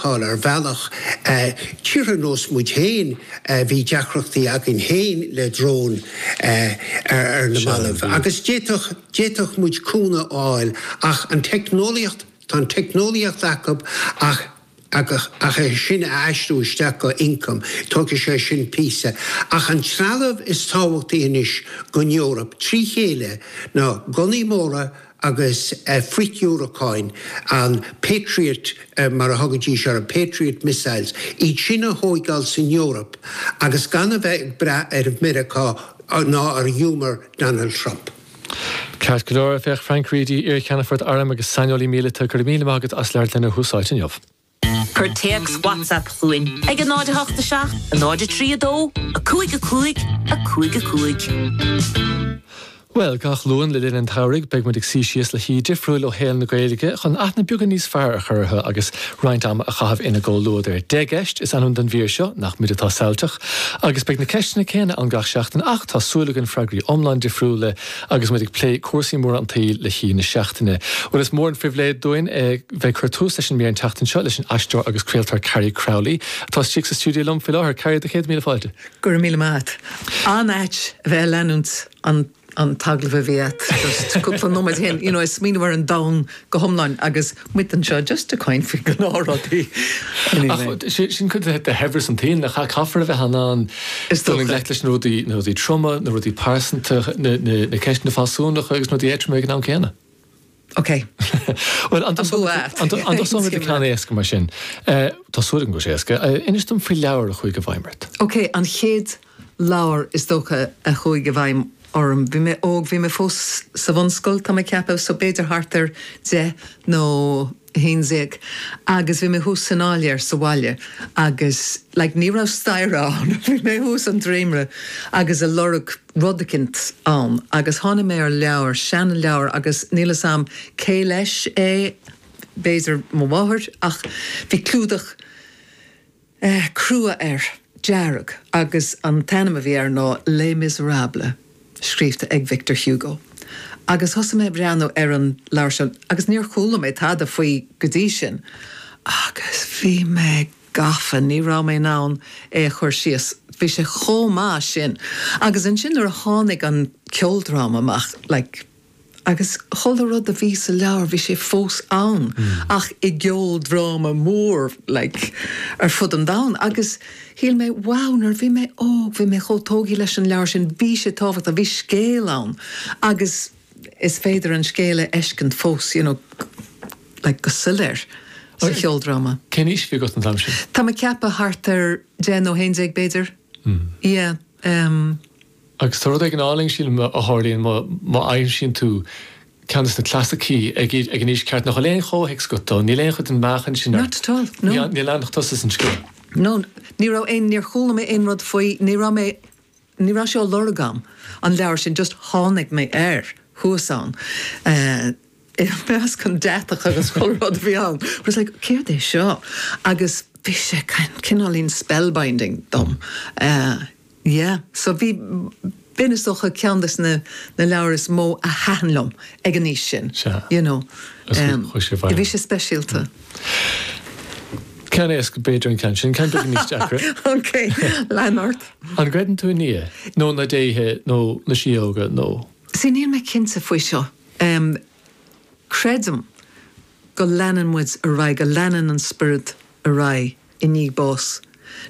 ar bhealach tíortha nós muid féin, bhí deacrachtaí againn féin le dróin ar na mallaibh agus d'fhéadfadh muid cúnamh a fháil ach an teicneolaíocht, tá an teicneolaíocht acub ach ach é sin a aistriú isteach go income, tógfaidh sé sin píosa. Ach an trealamh is tábhachtaí anois don Eoraip trí chéile na gunnaí móra, agus frithdhiúracáin, an Patriot mar a thugaidís ar an, Patriot missiles, iad sin a thóigeáil san Eoraip agus gan a bheith ag brath ar Mheiriceá ná ar humour Donald Trump. Ceart go leor, féach Frank Reidy, iar-cheannfort airm agus saineolaí míleata, go raibh míle maith agat as labhairt linn ar Tús Áite inniu. Cuir téacs WhatsApp chugainn ag 08 7 0 3 2 5 5 5 5. Bhuel, gach Luan le linn an tsamhraidh beidh muid ag suí síos le haoi difriúil ó shaol na Gaeilge chun aithne beagán níos fearr a chur orthu agus roinnt ama a chaitheamh ina gcomhluadar. Dea-cheist is ainm don mhír seo, nach muid atá samhailteach? agus beidh na ceisteanna céanna ann gach seachtain ach tá súil againn freagraí iomlán difriúla Agus muid ag plé cúrsaí móra an tsaoil le hAoi na Seachtaine, bhuel, is mór an phribhléid dúinn a bheith ag cur tús leis an mír an tseachtain seo leis an aisteoir agus craoltóir Carrie Crowley, atá istigh sa stiúideo liom faoi láthair. Carrie, céad míle fáilte! Go raibh míle maith a't. An-ait a bheith ag leanúint an an t-agallamh a bhí a't just cúpla nóiméad ó shin, you know, ag smaoineamh ar an domhan go hiomlán agus muid anseo just ag caint faoi gnáthrudaí anyway. Ach sin cuid de shaibhreas an tsaoil, nach ea? Caithfear a bheith in ann dul i ngleic leis na rudaí troma, na rudaí pearsanta, na ceisteanna fealsúnacha agus na rudaí éadroma ag an am céanna. Ok. Bhuel, an dtosóidh muid le ceann éasca mar sin. Tá súil agam go bhfuil sé éasca. Inis dom faoi leabhar a chuaigh i bhfeidhm ort. Ok, an chéad leabhar is dócha a chuaigh i bhfeidhm orm. Bhí mé óg, bhí mé fós sa bhunscoil tá mé ag ceapadh, so b'fhéidir thart ar deich nó a haon déag agus bhí mé thuas san áiléar sa bhaile agus like ní raibh staighre ann, bhí mé thuas an dréimire agus a' lorg rud eicint ann agus tháinig mé ar leabhar, seanleabhar agus níl 'fhios a'm cé leis é, b'fhéidir mo mháthair ach bhí clúdach, eh, crua air, dearg, agus an t-ainm a bhí air ná Les Misérables, scríobhta ag Victor Hugo. Agus thosaigh mé a' breathnú ar an leabhar seo agus níor chuala mé tada faoi go dtí sin agus bhí mé gafa, ní raibh mé in ann é a chur síos, bhí sé chomh maith sin. Agus ansin nuair a tháinig an ceoldráma amach, like, agus chuile rud a bhí sa leabhar, bhí sé fós ann ach i gceoldráma mór like ar fud an domhain agus shíl mé wow, nuair a bhí mé óg, bhí mé chomh tógtha leis an leabhar sin, bhí sé tábhachtach, bhí scéal ann agus is féidir an scéal a fheiscint fós you know like go soiléir sa cheoldráma. Cén aois a bhí agat an t-am sin? Tá mé ag ceapadh thart ar deich nó haon déag b'fhéidir, yeah. Agus tá rud éigin álainn, sílim, a tharlaíonn má aimsíonn tú ceann de na clasaicí ag an aois cheart, nach bhfuil aon chomhthéacs agat dó, níl aon chuid den mheáchan sin ort, níl ann ach tusa is an scéal. No, ní raibh aon, níor chuala mé aon rud faoi, ní raibh mé, ní raibh sé á lorg agam, an leabhar sin, just tháinig mé air thuas ann. i measc an deatach agus chuile rud a bhí ann. I was like, céard é seo? Agus bhí sé kind, cineáilín spellbinding dom. Eh, yeah. So bhí, b'in is dócha ceann des na, na leabhair is mó a thaitin liom ag an aois sin. Sea. You know. Agus bhí, chuaigh sé abhaile. Bhí sé speisialta. Ceann éasca b'fhéidir an ceann sin, ceann beag níos deacra. OK, lean ort. An gcreideann tú i nDia? Nó na déithe, nó na síóga, nó? Sea, níl mé cinnte faoi seo. Em. creidim go leanann muid ar aghaidh, go leanann an spiorad ar aghaidh i ndiaidh bás.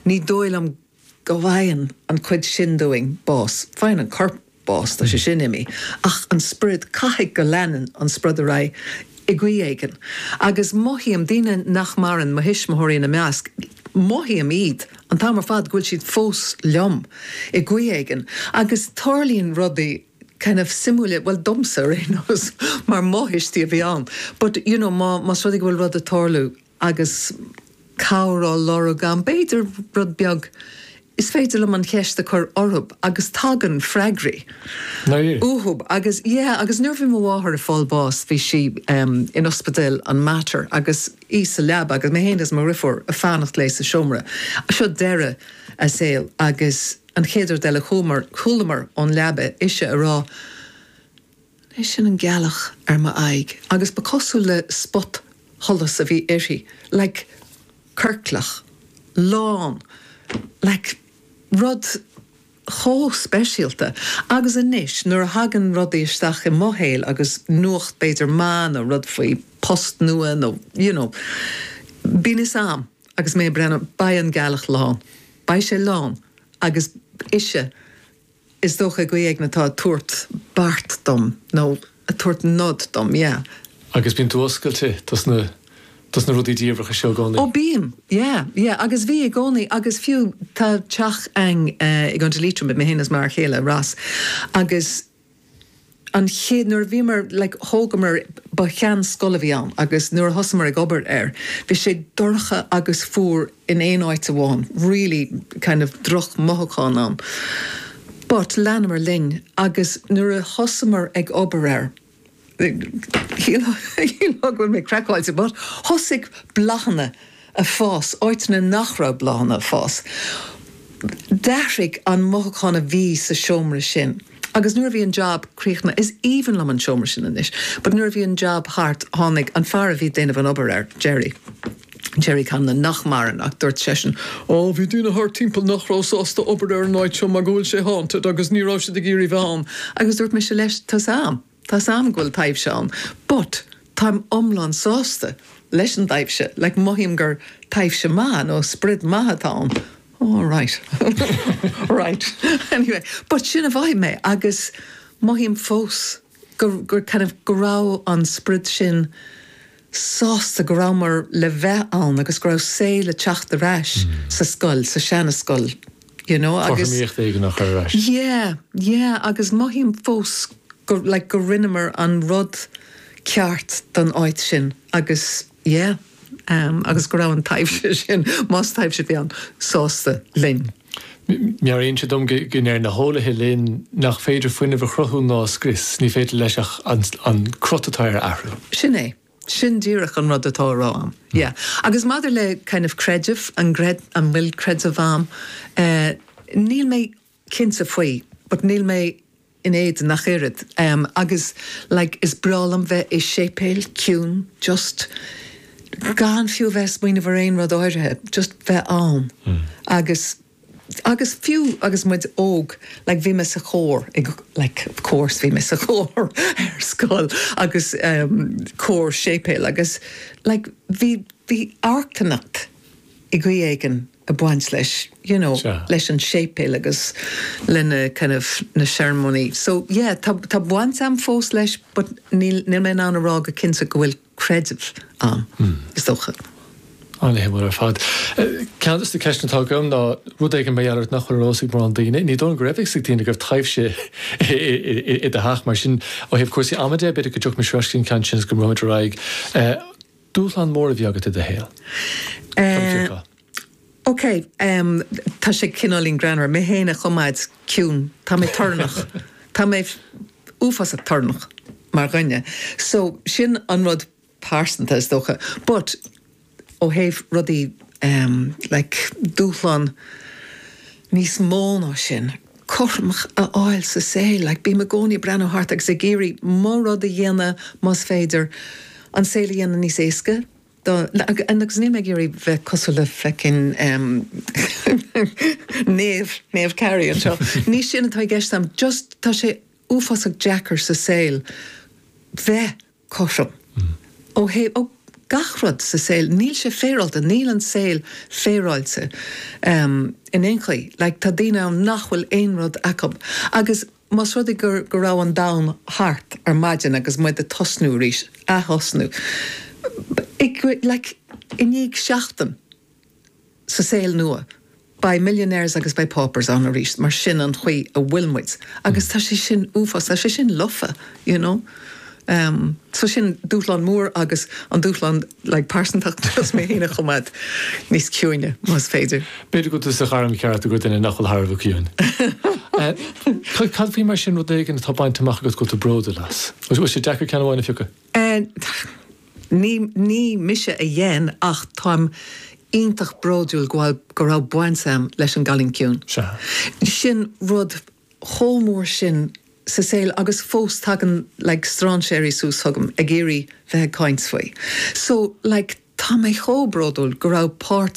Ní dóigh liom go bhfaigheann an chuid sin dúinn bás. Faigheann an corp bás, tá sé sin imithe, ach an spiorad, caithfidh go leanann an spiorad ar aghaidh i gcaoi éigin. Agus mothaím daoine nach maireann, mo thuismitheoirí ina measc, mothaím iad an t-am ar fad go bhfuil siad fós liom i gcaoi éigin agus tarlaíonn rudaí, kind of suimiúil, bhuel domsa ar aon nós mar mo thuistí a bhí ann but you know má más rud é go bhfuil rud ag tarlú agus cabhair á lorg a'm b'fhéidir rud beag is féidir liom an cheist a cur orthub agus tagann freagraí uathub agus yeah agus nuair bhí mo mháthair ag fáil bás bhí sí em in ospidéal an Mater agus í sa leaba agus mé féin is mo dhriofúr ag fanacht léi sa seomra seo deireadh a saoil agus An chéad rud eile chualamar ón leaba ise a rá, An é sin an gealach ar m'aghaidh? agus ba chosúil le spotsholas a bhí uirthi, like ciorclach, lán, like rud chomh speisialta. Agus anois nuair a thagann rudaí isteach i mo shaol agus nuacht b'fhéidir maith nó rud faoi post nua nó you know bíonn fhios a'm. Agus mé ag breathnú, beidh an gealach lán. Beidh sé lán. Agus ise, is dócha, i gcaoi éigin atá ag tabhairt beart dom, nó ag tabhairt nod dom, yeah. Agus bíonn tú oscailte dos na, dos na rudaí diamhracha seo i gcónaí? Ó bím, yeah, yeah. Agus bhí i gcónaí, agus fiú, tá teach a'inn i gContae Liatroma, mé fhéin is m'fhear chéile, Ross, agus. an chéad, nuair a bhíomar, like thógamar, ba sheanscoil a bhí ann agus nuair a thosamar ag obair air, bhí sé dorcha agus fuar in aon áit amháin, really kind of drochmhothúchán ann. But leanamar linn agus nuair a thosamar ag obair air, Shílfeá go bhfuil mé craiceáilte but thosaigh bláthanna a fás áiteanna nach raibh bláthanna a fás. D'athraigh an mothúchán a bhí sa seomra sin agus nuair a bhí an jab críochnaithe, is aoibhinn liom an seomra sin anois, but nuair a bhí an jab thart tháinig an fear a bhí ag déanamh an obair air, Gerry, Gerry Canna, nach maireann, ach dúirt seisean, Ó, bhí daoine thart timpeall nach raibh sásta obair ar an áit seo mar go bhfuil sé haunted agus ní raibh siad ag iarraidh bheith ann. Agus dúirt mise leis, Tá's a'm, tá's a'm go bhfuil taibhse ann, but táim iomlán sásta leis an dtaibhse, like mothaím gur taibhse maith nó sprid maith atá ann. Ó, right. Right. Anyway, but sin a mhothaigh mé agus mothaím fós. gur, kind of, go raibh an sprid sin sásta go rabhamar le bheith ann agus go raibh saol le teacht ar ais sa scoil, sa seana scoil, you know agus. cothromaíocht éigin a chur ar ais. Yeah, yeah agus mothaím fós go, like, go rinneamar an rud ceart don áit sin agus. Yeah, um, agus go raibh an taibhse sin, más taibhse a bhí ann, sásta linn. Meabhraíonn sé dom go ndeir na heolaithe linn nach féidir fuinneamh a chruthú ná a scrios, ní féidir leis ach an crot atá air a athrú. Sin é, sin díreach an rud atá á rá a'm. Yeah. Agus maidir le kind of creideamh, an bhfuil creideamh a'm, eh, níl mé cinnte faoi, but níl mé in éadan ach oiread. Em, agus like is breá liom bheith i séipéil, ciúin, just gan fiú a bheith ag smaoineamh ar aon rud áirithe, just bheith ann. Agus, agus fiú agus muid óg, like bhí mé sa chór, like of course bhí mé sa chór ar scoil agus em cór séipéil agus like bhí, bhí iontacht i gcaoi éigin. a bhaint leis, you know, leis an séipéal agus le na, kind of, na searmóiní. So, yeah, tá, tá baint a'm fós leis but níl, níl mé in ann a rá go cinnte go bhfuil creideamh a'm, is dócha. An-mhaith ar fad. Ceann des na ceisteanna atá agam ná rud éigin mar gheall ort nach bhfuil ar eolas ag mórán daoine. Ní dóigh liom go raibh fhios ag daoine go raibh taibhse i do theach mar sin ó thaobh cúrsaí ama de, b'fhéidir go dtiocfadh mise ar ais go dtí an ceann sin agus go mbogfainn ar aghaidh. Dúshlán mór a bhí agat i do shaol? Táim ciaptha. Eh. Ok. Em. Tá sé cineáilín greannmhar. Mé féin a choimeád ciúin. Tá mé torannach. Tá mé uafásach torannach mar dhuine. So, sin an rud pearsanta is dócha. But, ó thaobh rudaí, em, like, dúshlán níos mó ná sin, cothrom a fháil sa saol, like, bím i gcónaí ag breathnú thart agus ag iarraidh rud a dhéanamh más féidir, an saol a dhéanamh níos éasca do, and agus níl mé ag iarraidh bheith cosúil le feckin em Naomh, Naomh Carrie anseo, ní sin atá i gceist a'm, just tá sé uafásach deacair sa saol bheith. cothrom. Ó thaobh gach rud sa saol, níl sé féaráilte, níl an saol féaráilte in aon chaoi. Like, tá daoine ann nach bhfuil aon rud acu. Agus más rud é go raibh an domhan thart ar maidin agus muid ag tosnú arís, athtosnú, like, i ndiaidh seachtain, sa saol nua. Beidh millionaires agus beidh paupers ann arís mar sin an chaoi a bhfuil muid agus tá sé sin uafás, tá sé sin lofa you know. So sin dúshlán mór agus an dúshlán like pearsanta ná mé féin a choimeád níos ciúine más féidir. B'fhéidir go bhfuil tú sa ghairm cheart i gcomhair duine nach bhfuil thar a bheith ciúin. Cad faoi mar sin rud éigin atá bainte amach agat go bhfuil tú bródúil as? An bhfuil sé deacair ceann amháin a phiocadh? Ní ní mise a dhéan ach táim iontach bródúil go bhfuil go raibh baint a'm leis an gCailín Ciúin. Sin rud chomh mór sin sa saol agus fós tagann like stráinséirí suas chugam ag iarraidh bheith ag caint faoi. So like tá mé chomh bródúil go raibh páirt